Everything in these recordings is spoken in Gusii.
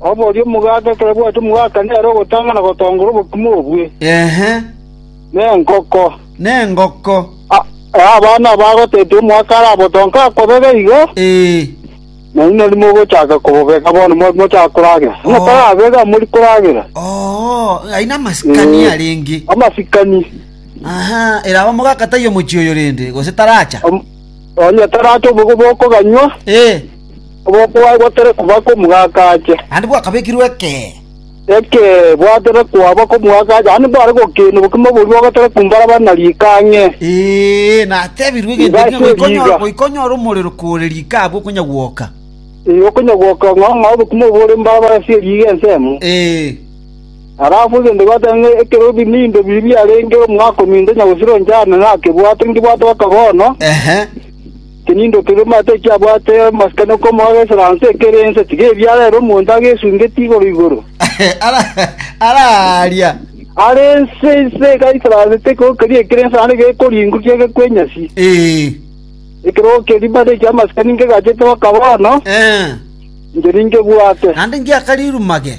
“Oborie omogaka, ekero bwatua omogaka nere ogotanga na gotongora obokima obwe, na engoko, na engoko, abana aba agotetia omogaka arabotonke akobega igo, na inwe mogochaka kobobega bono, mochake koragera. Onye tarabega, mori koragera. Ai namasikani arenge. Amasikani. Eraba omogaka taiyo mochie oyo rende, gose taracha? Onye taracha obobe bokoganywa. Obokwaye bwatare koba komogaka ache. Naende bwakabekirwe ekee. Ekee, bwatare koaba komogaka ache. Naende mbare gokina obokima boria bagatare kombaraba na riika ang'e. Ee, natebirwe egento erio, Igase goika onyore, riga. goika onyore omorero kore riika abwo okonya gwoka. Ee, okonya gwoka ng'a ng'a obokima obwo bore mbaraba ase riga ensemo. Ee, Alafu egento gwatare ng'a ekero ebinimbe biria biarenge omogaka ominto onye gosira onchana nakebwate, nkebwate baka bono. ehe. Tinindokire omanyete eki abwate amasikani okomoaga esaranse ekere ense, tiga ebiara ere omonto agesungetie igoro‐igoro. Ara aaria, Are ense inse iga esaranse tekoa keria ekere ense naende gekoringwa gegekwe enyasi. Ee, Ekerogo keria buna naiche amasikani nkegachete baka bono, ee, inche ninkebwate. naende ngiaka riruma ge.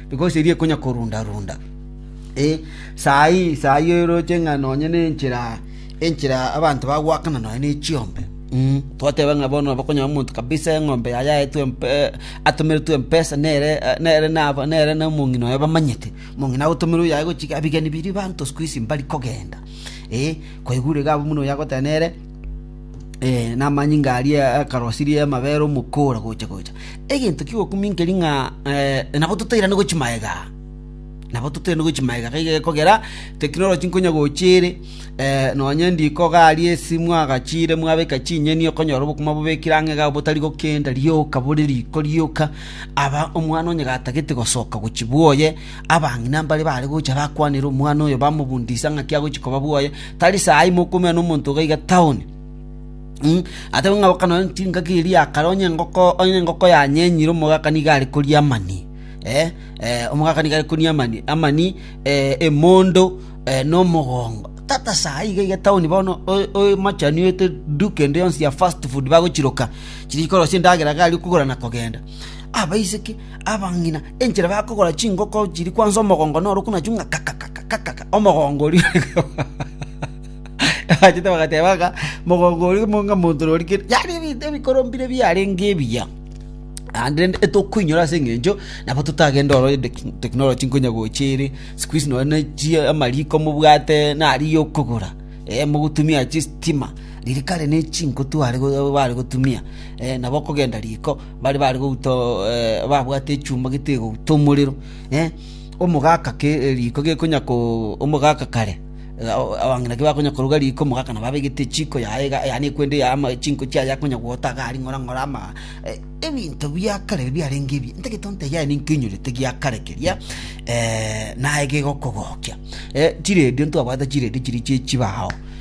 because erio ekonya korunda-runda. Ee, saa eye, saa eye oroche ng'a nonye nenchera, enchera abanto bagoakana nonye ne chiombe, mm twateba ng'a bono nabo okonyora omonto kabisa eng'ombe yaye aetwe atomeretwe mpesa nere nere naba nere na omong'ina oye bamanyete, omong'ina agotomerwa oyo aye gochia iga ebigeni biria abanto siku hizi mbari kogenda, ee, kwaigure iga abwo buna oyo agoteba nere. namanyinga aria akarosirie amabere omokora gocha‐gocha. Egento kigokuminkeria ng'a nabo totairane gochia magega aa, nabo totairane gochia magega iga egekogera teknoloji nkonya gocha ere nonye riko iga aria esimu agachire mwabeka chinyeni okonyora obokima bobekire ang'e iga botari gokenda rioka bore riko rioka aba omwana onye gatagete gosoka gochia bwoye. Abang'ina mbare baare gocha bakwanere omwana oyo, bamobundise ng'aki agochia koba bwoye. Tari saa ime okoumera nomonto iga iga taoni. Atebe ng'a boka nonye chingaki eria ya kare, onye engoko, onye engoko yanyenyire omogaka nigo are koria amani, omogaka nigo are koria amani, amani emondo na omogongo. Tata saa iga iga taoni bono oemachani oete duka ende yonsi ya fast food bagochiroka, chiria chikorosia endagera iga aria okogora na kogenda. Abaiseke. Abang'ina enchera bakogora chingoko chiria kwansa omogongo norokwe nachio ng'a kakakakakaka, omogongo oria bachete bagateba ng'a mogongo oria mo- ng'a monto noria kere, yaani ebinto ebikoro mbire biarenge ebiya. Naende rende etokoinyora ase eng'encho nabo totagende ororo ende ki technology nkonya gocha ere, sikuizi nonye na chi amariko mobwate nari ya okogora eh mogotumia chistima, riria kare ne chinko tware bare gotumia nabo okogenda riko. Baria bare gouta babwate echumba getegouta omorero, omogaka riiko gekonya—omogaka kare abang'ina tibakonya koruga riiko, omogaka nabo abegete echiko yaye iga, yaani ekwende yaye ama chinko chiaye akonya gwota iga aria ng'ora ng'ora ama. Ebinto bia kare ebi biarenge ebiya, ntagete ontebie aye ninki oinyorete gia kare keria naye gegokogokia. Chiredio ntwabwate chiredio chiria chie chibao.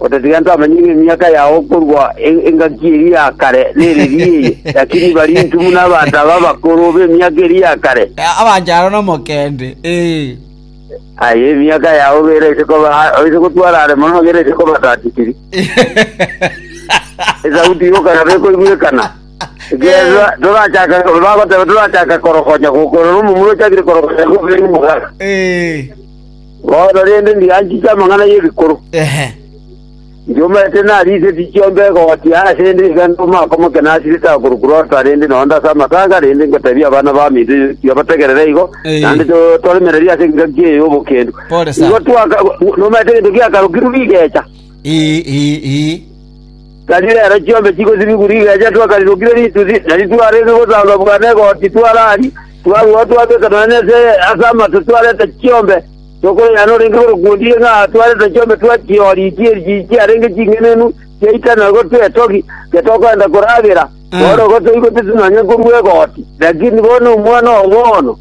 Otatiga gento amanye ng'a emiaka yao korwa engaki eria ya kare nereri eye, lakini barinchu buna abanto aba abakoro b'emiaka eria ya kare. Abancharo nomokende, ee. Aye emiaka yao gera ise koba ise gotwara are mono gera ise koba tatikiri. Esauti y'okaraba ekoigwekana. Ekiagera torachaka bagoteba torachaka korogonya gokorora omomura ochakire korogonya gobere omogaka. Ee. Bono rende ndianchete amang'ana y'ebikoro, ndiomete nariiseti chiombe egoti aase ende iga inde omoakomoke nasirete agoruku Lota rende noonde ase amatanga, rende ngoteebie abana baminto yaito bategerere igo, naende toremererie ase engaki eye y'obokendu. Igo twaka nomanyete egento giakarokirwe rigecha. Tari rero chiombe chigosibigwa rigeecha twakarirokire rituthi, na titwarenge gosamba bwa negoti twaraaria, twarua twabeka nonya ase ase amato twareta chiombe, tokoyana orenge korokuondire ng'a twareta chiombe twachiooria ichie echi chiarenge ching'enenu chiaitana gotwa etogi, getokogenda koragera. Bono igo toigoteti nonya korua egoti, lakini bono Omwana-o-Bono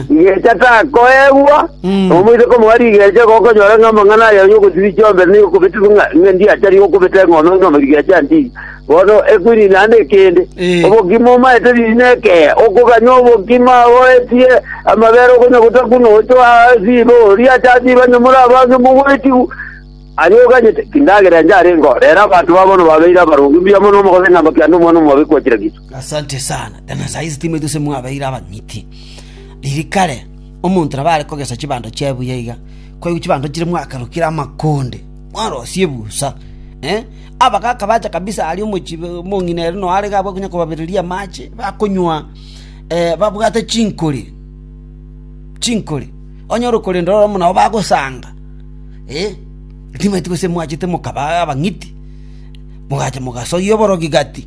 Rigeecha takoegwa, Mm. na omoiseke omogania rigeecha iga okonyora ng'a amang'ana aye y'ogosibia chiombere nigo okobetigwa ng'a ng'a ndiachari okobeta eng'ondo ng'a rigeecha ndiiye. Bono ekwini naende ekende, Eh. obogima omaete riiri na ekea, okoganya obogima oetie amabere okonya gotaku na ochoa asiiba oria acha asiiba onye more abange mogoetigu. Aria oganyete, tindagera enchara engo, rero abanto babo bono babeire abaronge mbuya mono omogose ng'a mbakande omwana omobe kochira Kristo. Asante sana. Ekero saisi timanyeti gose mwabeire abang'iti. Riria kare omonto nabo are kogesa chibando chiaye buya iga, kwaigwa chibando chire mwakarokire amakonde, mwarosie ebusa. Abagaka bacha kabisa aria omochie omong'ina ere noo are iga abwate konya kobabereria amache, bakonywa babwate chinkori, chinkori. Onye ore okorenda ororo buna nabo bagosanga, timanyeti gose mwachete mokaba abang'iti, mogacha mogasoyia oborogi gati.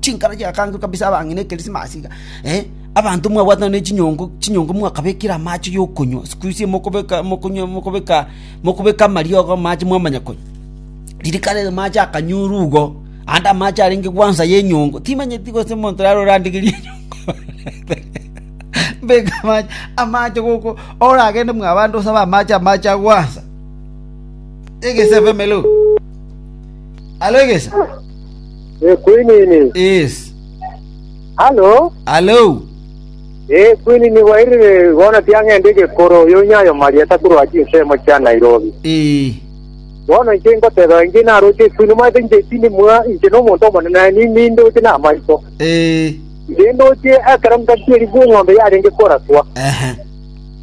Chinkaro chigakangerwa kabisa abang'ina Ekerisimasi iga, abanto mwabwatana ne chinyongo, chinyongo mwakabekire amache yokonywa, sikuisi mokobeka mokonywa mokobeka mokobeka amariogo amache mwamanya konywa. Riria kare amache akanyorwa igo, ande amache arenge gwansa ya enyongo, timanyeti gose omonto rero orandegerie enyongo mbeke amache amache goko oragende mwabande osabe amache amache a gwansa. Egesa FM elo, alo egesa. Eh, Kwinini. Yes. Halo? Halo? Eh, Kwinini bwairire bono tiang'ende egekoro oyo onyayo Maria takorwa chinsemo chia Nairobi. Eh. Bono inche ingoteba inche naroche Kwinini mwaete inche chini mwa inche no omonto omonene aye ni- nindoche na amaito. Eh. Inche ndoche ekero ngatieri bw'eng'ombe yarenge koraswa. Ehe.